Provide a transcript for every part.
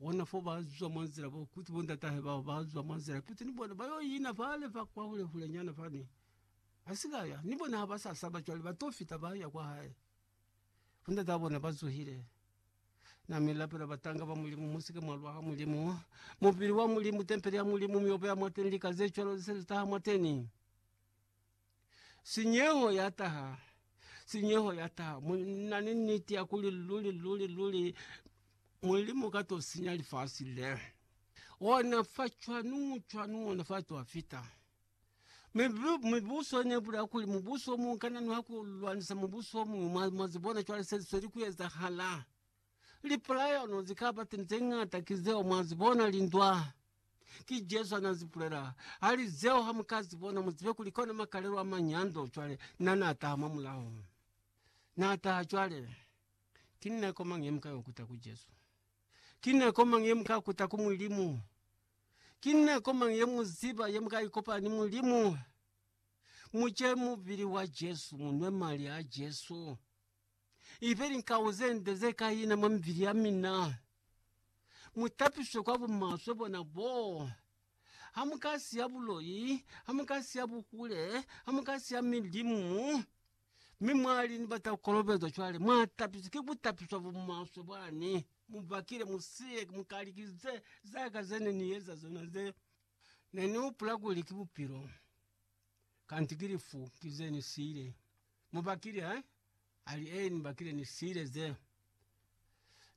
Ona fo ba zwa mwa nzila bo kuti bo ndatahe bao ba zwa mwa nzila kuti ni bona ba yo ina fale fa kwa hule hule nyana fani. Ba si ka ya, ni bona ha ba sa saba cwale ba to fita ba ya kwa hae. Bo ndataha bona ba zuhile. Na mi lapela batanga ba Mulimu, Mu si ke mwa lwa ha Mulimu. Mubili wa Mulimu, tempele ya Mulimu, mi obeha mwateni lika ze cwalo ze se li taha mwateni. Sinyeho ya taha, sinyeho ya taha. Mu na ni niti ya kuli luli, luli, luli Mulimu ka to sinya lifasi le. Ona fa cwanu, cwanu, ona fa to fita. Mibu- Mibuso ne bula kuli mubuso mu kana nwa ku lwanisa mubuso mu, mwa, mwa zibona cwale se sweli ku ezahala. Lipuleano ze ka ba teni ze ñata ki zeo mwa zi bona, lindwa. Ki Jesu ha n'a zi pulela. A li, Zeo ha mu ka zi bona, mu zibe kuli kona makalelo a manyando. Cwale, n'a, n'a taha mwa mulaho. N'a taha. Cwale, ki nako mañi ye mu ka y'o kuta ku Jesu? Ki nako mañi ye mu ka kuta ku Mulimu? Ki nako mañi ye mu ziba ye mu ka ikopanya ni Mulimu? Mu ce mubili wa Jesu, mu nwe mali a Jesu. ibe linkauzende zekaina mwa mibili yamina, mutapiswe kwa bumaswe bona boo. Hamukasiya buloi, hamukasiya bukule, hamukasiya milimu, mi mwali ni batakukolobezwa cwale, mwatapiswe ki kutapiswa bumaswe bwani. Mubakile musiye mukalikize zaka zene nieza zona ze nenihupula kuli ki bupilo. Kanti ki lifu ki ze ni siile. Mu bakile, eh? Ali, Ee, ni bakile ni siile ze.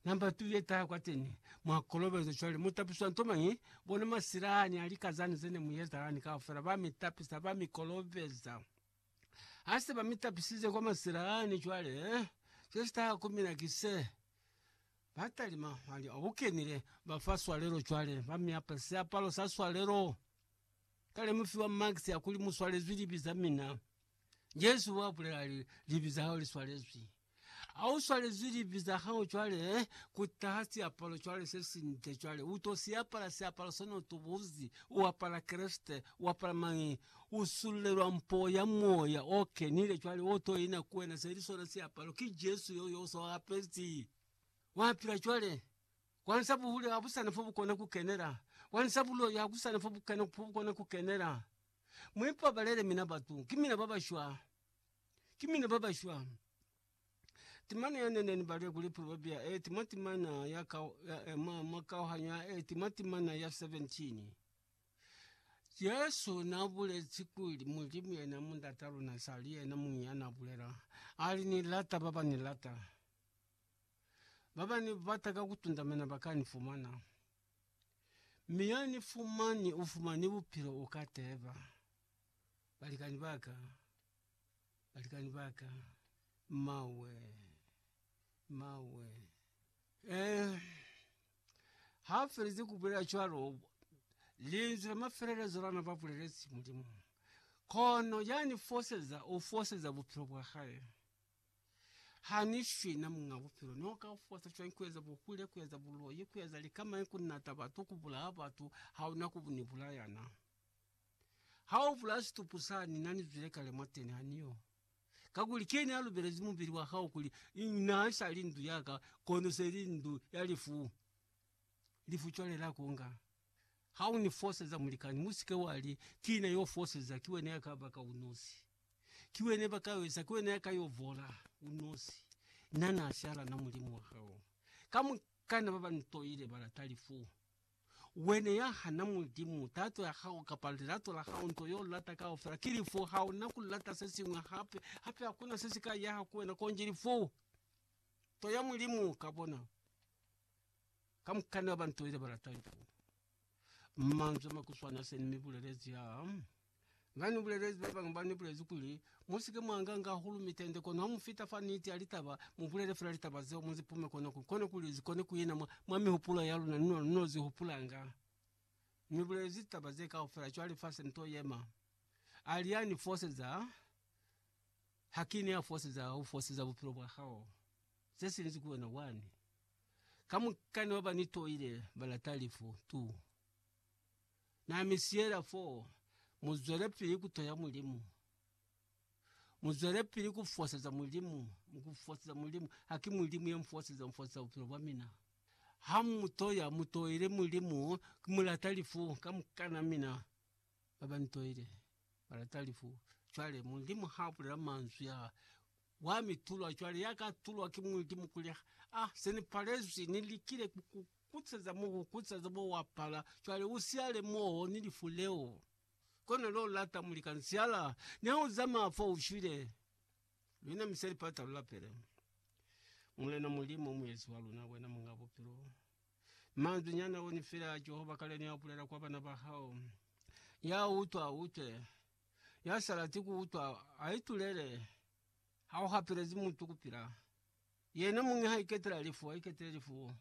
Namba tu ye taha kwateni, mwa kolobeza. Cwale, mu tapiswa nto mañi? Bona masila ani a lika zani ze ne mu yeza lani kaufela, ba mi tapisa, ba mi kolobeza. Ha se ba mi tapisize kwa masila ani, cwale, eh, se si taha ku mina ki se. Ba talima, ali, O, u kenile. Ba fa swalelo cwale, ba mi apa siapalo sa swalelo. Ka lemufi wa Max ya kuli mu swalezwi libi za mina, Jesu wa bulela ali, Libi za hao li swalezwi. Ha u swalezwi libi za hao cwale, ku taha siapalo cwale se si nde cwale. U to si apala siapalo sona u tubuzi, u apala Kreste, u apala mañi? U sulelwa mpo ya Moya o Kenile cwale o to ina ku wena, se li sona siapalo. Ki Jesu yo, yo u so apezi. Wa pila cwale. Kwanisa buhule ha busana fo bukona kukenela. Kwanisa buloi ha kusana fo bukena fo bukona kukenela. Muipabalele mina batu, ki mina babashwa. Ki mina babashwa. Timana ya nene ni bale kuli proverbia e tima timana ya ka ya e ma ma kauhanyo ya e tima timana ya 17. Jesu na bulezi kuli Mulimu yena mu ndata luna sali yena munya na bulela. Ali ni lata baba ni lata. Baba ni bata ka kutundamana ba ka ni fumana, mi ya ni fumani u fumani bupilo u ka teba. Balikani ba ka, balikani ba ka, mawe, mawe. Eh, ha felize ku bulela cwalo, linzwi la mafelelezo la na ba bulelezi Mulimu, kono ya ni foseza, u foseza bupilo bwa hae. Ha ni shwi na muñ'a bupilo, ne u ka ufosa cwañi ku eza bukule, ku eza buloi, ku eza lika mañi, ku nata batu, ku bulaya batu? Ha u na ku ni bulaya na. Ha u bulaya situpu sa ni na ni zwile kale mwateni, ha ni yo. Kakuli ki ne a lubelezi mubili wa hao kuli, Naa sa li ndu ya ka, kono se li ndu ya lifu. lifu cwale la kunga. Ha u ni foseza, mulikani, mu si ke wa li, Ki na yo foseza, ki wena ya ka baka unosi. Ki wena ba ka yo eza, ki wena ya ka yo vola unosi. Na na siala na Mulimu wa hao. Kamukana ba ba ntoile ba lata lifu. Wena ya hana Mulimu, tato ya hao, kapa lilato la hao, nto yo lata kaufela, ki lifu. Ha u na ku lata se siñwi hape. Hape hakuna se si ka yaha ku wena konji lifu. Nto ya Mulimu, ka bona. Kamukana bantu ile balata ntu. Manzwi makuswana se ni bulelezi ya. Nga ni bulelezi ba banga ba ni bulezi kuli musike mwanga nga hahulu mitende kono ha mufita fa niti ya litaba mubulele fela litaba zeo muzipume kono kuli kone kuli zikone kuina mwa, mwa mihupulo ya luna nino nino zihupulanga. Ni bulelezi litaba ze kaufela cwale fa se nto yema. Ali ya ni foseza, hakini ya foseza ufoseza bupilo bwa hao. ze sinzi ku wena wani. Ka mukani wa ba ni toile ba lata lifu tu. Na mi siyela fo, mu zwele pili ku toya Mulimu. Mu zwele pili ku foseza Mulimu, ku foseza Mulimu. Ha ki Mulimu ya mfoseza, mfoseza bupilo bwa mina. Ha mu toya, mu toile Mulimu, ki mu lata lifu ka mukana mina. ba ba ntoile ba lata lifu. Cwale Mulimu ha bulela manzwi a, Wa mi tulwa, cwale ya ka tulwa ki Mulimu kuli, A, se ni palezwi, ni likile ku ku kutseza mo, ku kutseza mo, wa pala, cwale u siyale mo ni lifu leo. Kona lo lata muli ka nsiala, ni ha u zamaya fo u shwile, lu inamise lipata lu lapele Mulena Mulimu, Muezi wa luna, wena Muñ'a Bupilo. Manzwi nyana one fela a Jehova kale ne a bulela kwa bana ba hao. Ya utwa, a utwe. Ya sa lati ku utwa, a itulele. Ha u hapelezi mutu ku pila. Yena muñi ha iketela lifu, a iketele lifu.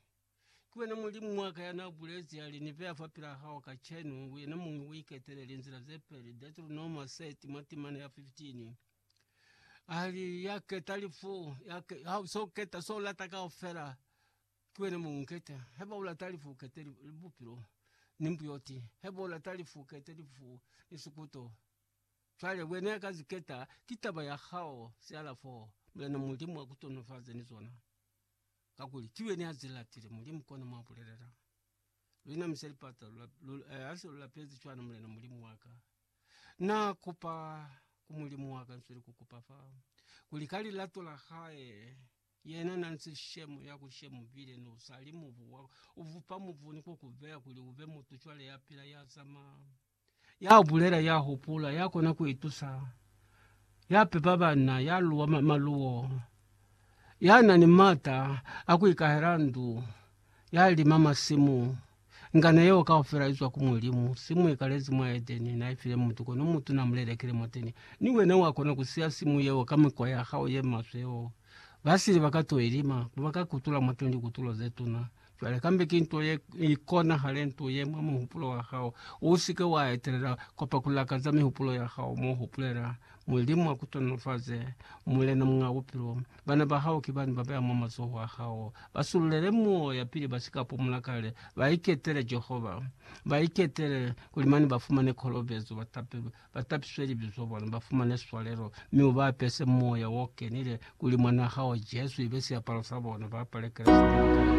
Ki wena Mulimu wa ka ya n'a bulezi, ya li, Ni beya fapil'a hao kacenu, wena muñi u iketele linzila ze peli. Deuteronoma 30, mwa timana ya 15. A li, Ya keta lifu, ya ke, ha u s'o keta s'o lata kaufela, Ki wena mo unketa. Haiba ulata lifu ukete bupilo ni mbuyoti. Haiba ulata lifu ukete lifu ni sikuto. Cwale wena ya ka zi keta, ki taba ya hao feela fo. Mulena Mulimu akutonofaze ni zona, kakuli ki wena ya zi latile. Mulimu kona mo abulelela. Luna mi se lipata ha se lu lapezi cwana, Mulena Mulimu wa ka, Na kupa ku Mulimu wa ka, nsweli ku kupa fa, kuli ka lilato la Hae, Yena na nsi shemo ya ku shemo bile ni u sa li mubu wa u vupa mubu ni ku ku beya kuli u be mutu cwale ya pila, ya zama, ya bulela, ya hupula, ya kona ku itusa, ya pepa bana, ya luwa ma- maluwo, ya na ni mata a ku ikahela ndu, ya lima masimu, Ngana yeo kaufela izwa ku Mulimu, simu ikalezi mwa Edeni naifile mutu, kono mutu namulelekile mwateni. Ni wena wakona kusiya simu yeo ka mikwa ya hao ye maswe yeo. Basili baka to ilima, kuba ka kutula mwateni likutulo zetuna. Cwale kambe ki nto ye ikonahale nto ye mwa muhupulo wa hao. Usike wa etelela kwa pa kulakaza mihupulo ya hao, mo hupulela, Mulimu akutonofaze, Mulena Muñ'a Bupilo. Bana ba hao ki bani ba beya mwa mazoho a hao. Ba sululele moya pili ba si ka pumula kale. Ba iketele Jehova. Ba iketele kuli mane ba fumane kolobezo, ba tapelwe, ba tapiswe libi zwa bona, ba fumane swalelo, mi u ba apese Moya o Kenile kuli Mwanaa hao Jesu ibe siapalo sa bona, ba apale Kreste.